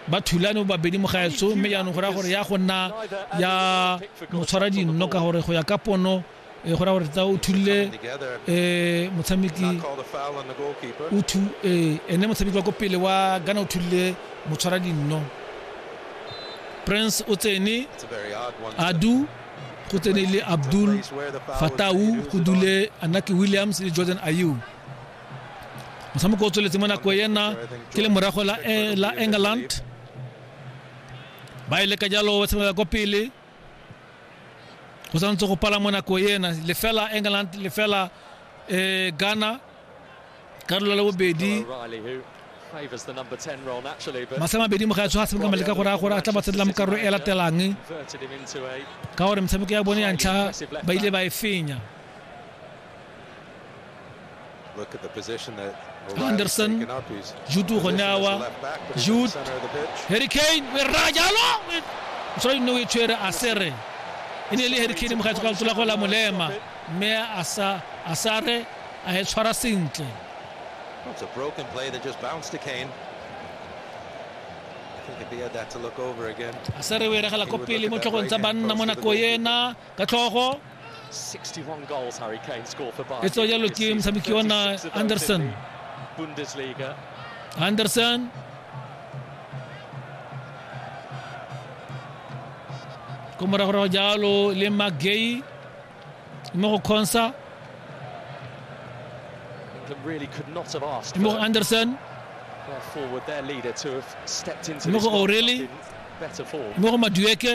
ba thulane babedi mo gaetso mme jaanong go raya gore ya go nna ya motshwara dinno ka gore go ya ka pono e go raya gore tsa o thulile um motshameki eh, ene motshameki wa ko pele wa gana o thulile motshwara dinno prince o tsene adu go tsene le abdul fatau go dule anaki williams le jordan ayou motshameko o tsweletse mo nako ena ke le morago la, eh, la england ba e leka jalo ba tshameka kwa pele go santse go pala mo nako ena lefela england lefela eh, ghana karolo la bobedi masea mabedi mo ga tsho ga tshameka maleka gore a gore a tla ba tshedela mo karolo e latelang ka gore metshameko ya bone ya ntlha ba ile ba e fenya anderson jude ugonawa jude harry kane werra jalo mosadi nne o e tshwere a sere e ne e le harry kane mogatso ka letsola go la molema mme a sare a e tshwara sentle It's a broken play that just bounced to Kane. I think if he had that to look over again. Asere o eregela ko pele mo tlhogong tsa banna mo nako ena ka tlhogo e tswa jalo ke motshameki wa na anderson anderson ko moragorago jalo le magay mo go consa mo go anderson mo go o'reilly mo go madueke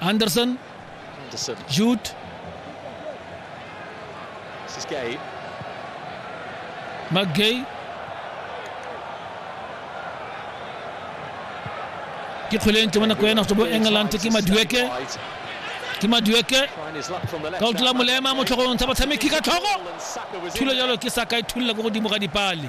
Anderson Anderson. Jude This is Gay. McGay ke kgwele e ntle mo nako ena go tswa bo England ke Madueke Right. ke Madueke Trying his luck from the left. ka o tlola molema mo tlhogong ntsha batshameki ka tlhogo Ball and Saka was in thulo there. jalo ke saka e thulela ko godimo ga dipale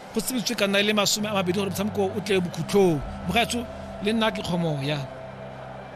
Go tsebisitswe ka nna e le masome a mabedi gore motshameko o tle bokhutlhong. Mogaetsho le nna ke kgomoya.